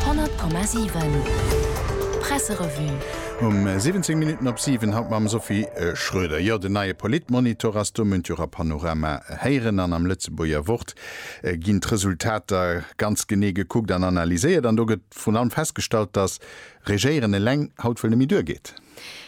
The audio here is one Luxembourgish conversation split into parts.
100,7 Presserevue. Um 17 Minutten op 7, haut mam Sophie Schroeder. Jo, den neie Politmonitor ass do, mënnt jo Ra Panorama héieren. An am Lëtzebuerger Wort ginn d'Resultater ganz genee gekuckt an analyséiert. An do gëtt vrun allem festgestallt, datt Regéieren eleng haut wuel nemme duer geet.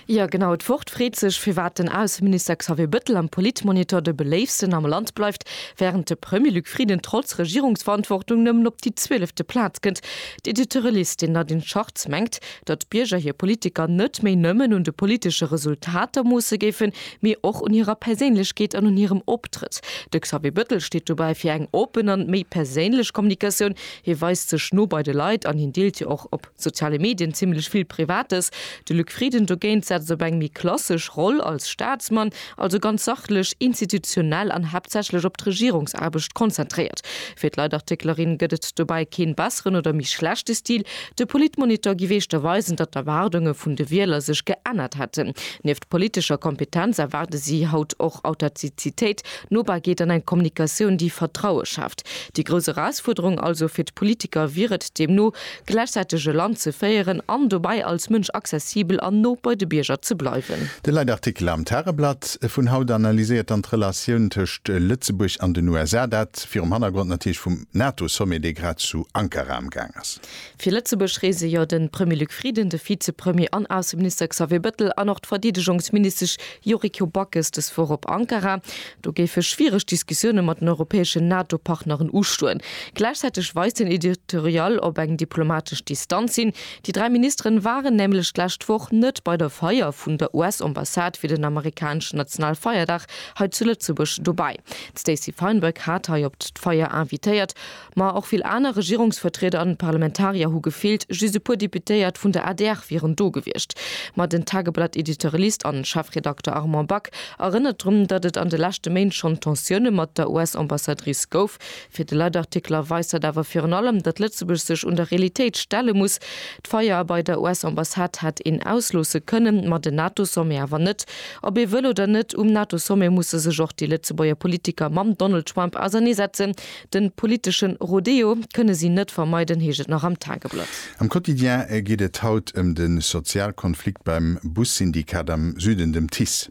Jo genau, et Wort freet sech firwat den Ausseminister Xavier Bëttel am Politmonitor de beléifsten am Land bleift, während de Premier Luc Frieden trotz Regierungsverantwortung nëmmen op déi zwielefte Plaz kënnt. D'Editorialistin Nadine Schartz mengt, datt d'Bierger hir Politiker net méi nëmmen un de politesche Resultater moosse géifen, mee och un hirer Perséinlechkeet an un hirem Optrëtt. De Xavier Bëttel steet dobäi fir eng open an méi perséinlech Kommunikatioun, hie weist sech no bei de Leit an hien deelt jo och op. Soziale Medien, zimmlech vill Privates. De Luc Frieden dogéint setzt op eng méi klassesch Roll als Staatsmann, also ganz sachlech, institutionell an haaptsächlech op d'Regierungsaarbecht konzentréiert. Fir d'Leitartiklerin gëtt et dobäi keen besseren oder méi schlechte Stil. De Politmonitor géif éischter weisen, datt d'Erwaardunge vun de Wieler sech geännert hätten. Nieft politescher Kompetenz erwaarde si haut och Authentizitéit, Nobarkeet an eng Kommunikatioun, déi Vertraue schaaft. Déi grouss Erausfuerderung also fir d'Politiker wier et deemno, gläichzäiteg e Land ze féieren an dobäi als Mënsch accessibel an no bei de Bierger ze bleiwen. De Leitartikel am Tageblatt vun haut analyséiert dann d'Relatioun tëscht Lëtzebuerg an den USA, dat virum Hannergrond natierlech vum NATO-Sommet, dee grad zu Ankara amgaang ass. Fir Lëtzebuerg reese jo de Premier Luc Frieden, de Vizepremier an Ausseminister Xavier Bettel an och d'Verdeedegungsministesch Yuriko Backes dës Woch op Ankara. Do géife schwiereg Diskussioune mat den europäeschen NATO-Partneren ustoen. Gläichzäiteg weist den Editorial op eng diplomatesch Distanz hin. Déi dräi Ministeren waren nämlech d'lescht Woch net bei der Feier vun der US-Ambassade fir den amerikaneschen Nationalfeierdag hei zu Lëtzebuerg dobäi. D'Stacey Feinberg hat hei op d'Feier invitéiert Ma och vill aner Regierungsvertrieder an Parlamentarier hu gefeelt, just e puer Deputéiert vun der adr wieren do gewiescht. Ma den Tageblatt-Editorialist an Chefredakter Armand Back erënnert drun, datt et an de leschte Méint schonn Tensioune mat der US-Ambassadrice gouf. Fir de Leitartikler weist dat awer virun allem, datt Lëtzebuerg sech un der Realitéit stelle muss. D'Feier bei der US-Ambassade hätt een ausloosse kënnen, ma den NATO-Sommet awer net. Ob ee wëll oder net, um NATO-Sommet musse sech och déi Lëtzebuerger Politiker mam Donald Trump auserneesetzen, Den politeschen Rodeo kënne si net vermeiden, heescht et nach am Tageblatt. Am Quotidien geet et haut ëm de Sozialkonflikt beim Bussyndikat am Süden, dem TICE.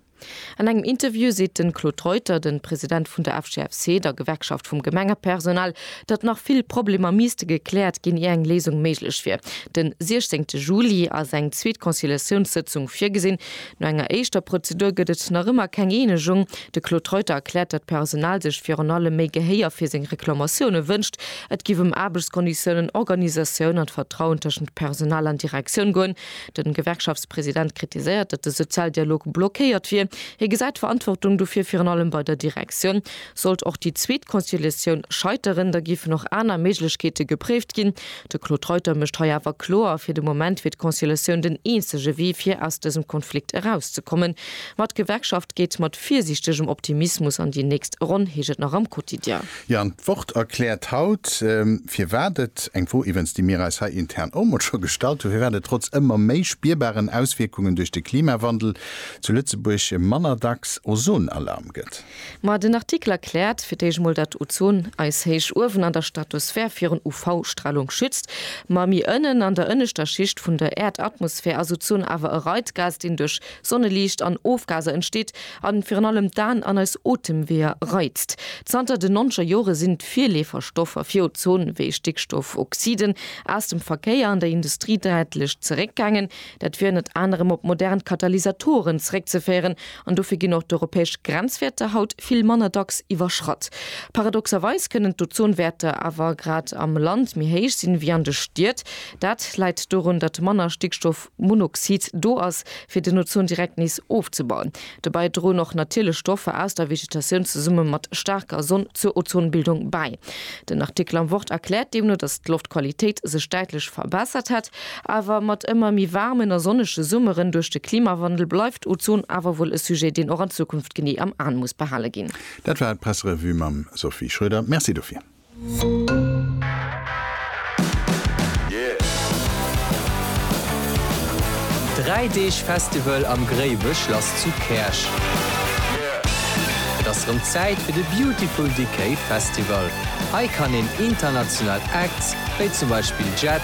An engem Interview seet de Claude Reuter, den President vun der FGFC, der Gewerkschaft vum Gemengepersonal, datt nach vill Problemer miisste gekläert ginn, ier eng Léisung méiglech wier. Den 16 Juli ass eng zweet Conciliatiounssëtzung virgesinn. No enger éischter Prozedur gëtt et nach ëmmer keng Eenegung. De Claude Reuter erkläert, datt d'Personal sech virun allem méi Gehéier fir seng Reklamatioune wënscht. Et géif ëm Aarbechtskonditiounen, Organisatioun an d'Vertrauen tëschent Personal an Direktioun goen. De Gewerkschaftspresident kritiséiert, datt de Sozialdialog blockéiert wier. Hie gesäit d'Verantwortung dofir virun allem bei der Direktioun. Sollt och déi zweet Conciliatioun scheiteren, da géifen och aner Méiglechkeete gepréift ginn. De Claude Reuter mécht hei awer kloer, fir de Moment wier d'Conciliatioun den eenzege Wee fir aus dësem Konflikt erauszekommen. Ma d'Gewerkschaft geet mat virsiichtegem Optimismus an déi nächst Ronn, heescht et nach am Quotidien. Jo, an d'Wort erkläert haut, firwat et, eng Fro iwwens déi mir eis hei intern och mol scho gestallt hunn, firwat et trotz ëmmer méi spierbaren Auswierkungen duerch de Klimawandel zu Lëtzebuerg manner dacks Ozonalarm gëtt. Ma den Artikel erkläert fir d'éischt mol dat Ozon eis héich uewen an der Stratosphär virun UV-Stralung schützt. Ma mi ënnen an der ënneschter Schicht vun der Äerdatmosphär ass Ozon awer e Reizgas deen duerch Sonneliicht an Ofgaser entsteet an virun allem d'Aen an eis Otemweeër reizt. Zanter den noncher Jore sinn d'Virleeferstoffer fir Ozon wéi Stickstoffoxiden aus dem Verkéier an der Industrie däitlech zeréckgaangen. Dat wier ënnert anerem op modern Katalysatoren zeréckzeféieren an dofir ginn och d'europäesch Grenzwäerter haut vill manner dacks iwwerschratt. Paradoxerweis kënnen d'Ozonwäerter awer grad am Land méi héich sinn, wéi an de Stied. Dat läit dorun, datt manner Stickstoffmonoxid do ass, fir den Ozon direkt nees ofzebauen. Dobäi droen och natierlech Stoffer aus der Vegetatioun zesumme mat staarker Sonn zur Ozonbildung bäi. Den Artikel am Wort erkläert deemno, datt d'Loftqualitéit sech däitlech verbessert hätt, Awer mat ëmmer méi waarmen a sonnege Summeren duerch de Klimawandel bleift Ozon awer wuel e Sujet, deen och an Zukunft genee am Aen muss behale ginn. Dat war d'Presserevue mam Sophie Schroeder. Merci dofir. Dräi Deeg Festival am Gréiwechlass zu Käerch. Et ass rëm Zäit fir de Beautiful Decay Festival. Hei kann een international Acts, wéi zum Beispill Jet,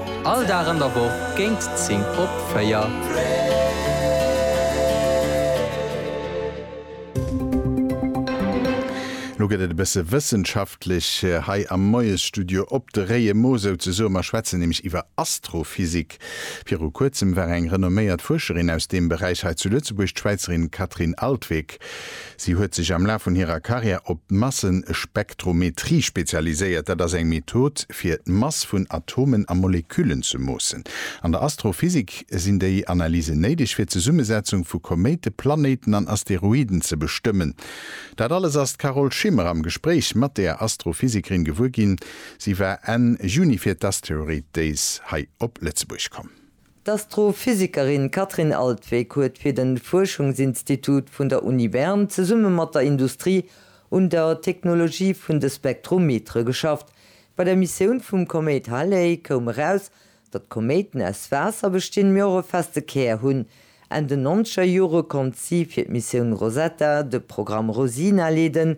All Dag an der Woch géint 10 op 4. Lo gëtt et e bësse wëssenschaftlech hei am Moiesstudio op de réie Mo souzesoe. Mer schwätzen nämlech iwwer Astrophysik. Viru Kuerzem war eng renomméiert Fuerscherin aus deem Beräich hei zu Lëtzebuerg, d'Schwäizerin Catherine Altwegh. Si huet sech am Laf vun hirer Karriär op d'Massespektrometrie spezialiséiert. Dat ass eng Method, fir d'Mass vun Atomen a Moleküllen ze moossen. An der Astrophysik sinn déi Analysen néideg, fir d'Zesummesetzung vu Koméite, Planéiten an Asteroiden ze bestëmmen. Dat alles ass d'Carole Schimmer am Gespréich mat der Astrophysikerin gewuer ginn. Si war Enn Juni fir d'Asteroid Days hei op Lëtzebuerg komm. D'Astrophysikerin Katrin Altwegg huet fir de Fuerschungsinstitut vun der Uni Bern zesumme mat der Industrie un der Technologie vun de Spektrometere geschafft. Bei der Missioun vum Koméit Halley koum eraus, datt Koméiten aus Waasser bestinn, mee och e feste Kär hunn. Enn den nonzeger Jore konnt si fir d'Missioun Rosetta de Programm Rosina leeden,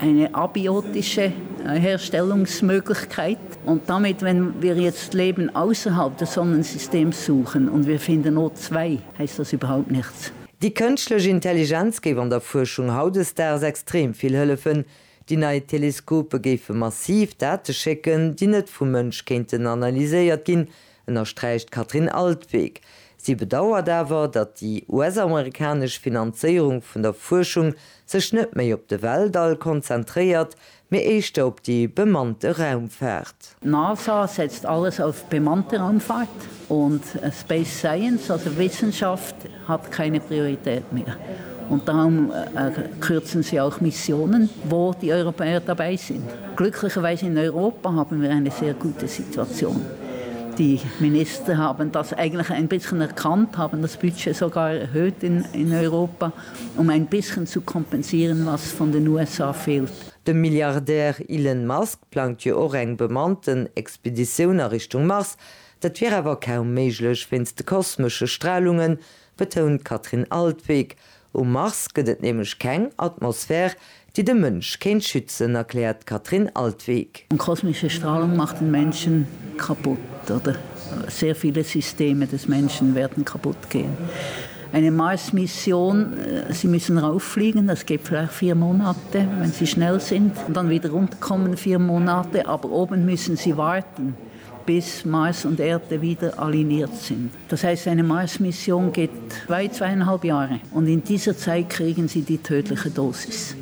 Eine abiotische Herstellungsmöglichkeit und damit, wenn wir jetzt Leben ausserhalb des Sonnensystems suchen und wir finden o zwei, heißt das überhaupt nichts. Déi kënschtlech Intelligenz géif an der Fuerschung hautdesdaags extrem vill hëllefen. Déi nei Teleskope géife massiv Date schécken, déi net vum Mënsch kéinten analyséiert ginn, ënnersträicht d'Katrin Altwegh. Si bedauert awer, datt déi US-amerikanesch Finanzéierung vun der Fuerschung sech net méi op de Weltall konzentréiert, mee éischter op déi bemannte Raumfaart. D'NASA setzt alles auf bemannte Raumfahrt und Space Science, also Wissenschaft, Hat keine Priorität mehr und darum kürzen sie auch Missionen, wo die Europäer dabei sind. Glücklicherweise in Europa haben wir eine sehr gute Situation. Die Minister haben das eigentlich ein bisschen erkannt, haben das Budget sogar erhöht in Europa, um ein bisschen zu kompensieren, was von den USA fehlt. De Milliardär Elon Musk plangt jo och eng bemannten Expeditioun a Richtung Mars. Dat wier awer kaum méiglech wéinst de kosmesche Stralungen, betount d'Katrin Altwegg. Um Mars gëtt et nämlech keng Atmosphär, déi de Mënsch kéint schützen, erkläert d'Katrin Altwegg. Kosmesche Stralung macht den Menschen kaputt oder sehr viele Systeme des Menschen werden kaputt gehen. Eine Marsmission, sie müssen rauffliegen, das geht vielleicht vier Monate, wenn sie schnell sind, und dann wieder runterkommen, vier Monate, aber oben müssen sie warten. bis Mars und Erde wieder aligniert sind. Das heißt, eine Mars-Mission geht weit zweieinhalb Jahre und in dieser Zeit kriegen sie die tödliche Dosis.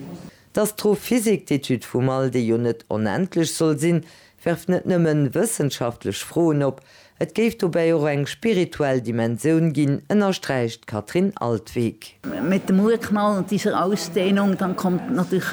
D'Astrophysik, d'Etüd vum All, déi jo net onendlech soll sinn, werft net nëmme wëssenschaftlech Froen op, et géif dobäi och eng spirituell Dimensioun ginn, ënnersträicht d'Katrin Altweg. Mit dem Urknall und dieser Ausdehnung, dann kommt natürlich.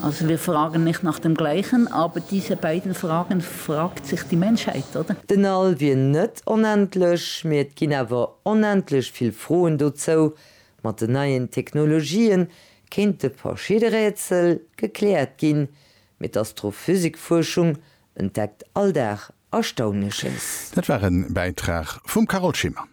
Also wir fragen nicht nach dem Gleichen, aber diese beiden Fragen fragt sich die Menschheit, oder? Den All wier net onendlech, mee et ginn awer onendlech vill Froen dozou. Mat den neien Technologien kéinte verschidde Rätsel gekläert ginn, mee d'Astrophysikfuerschung entdeckt all Dag Erstaunleches. Dat war e Bäitrag vum Carole Schimmer.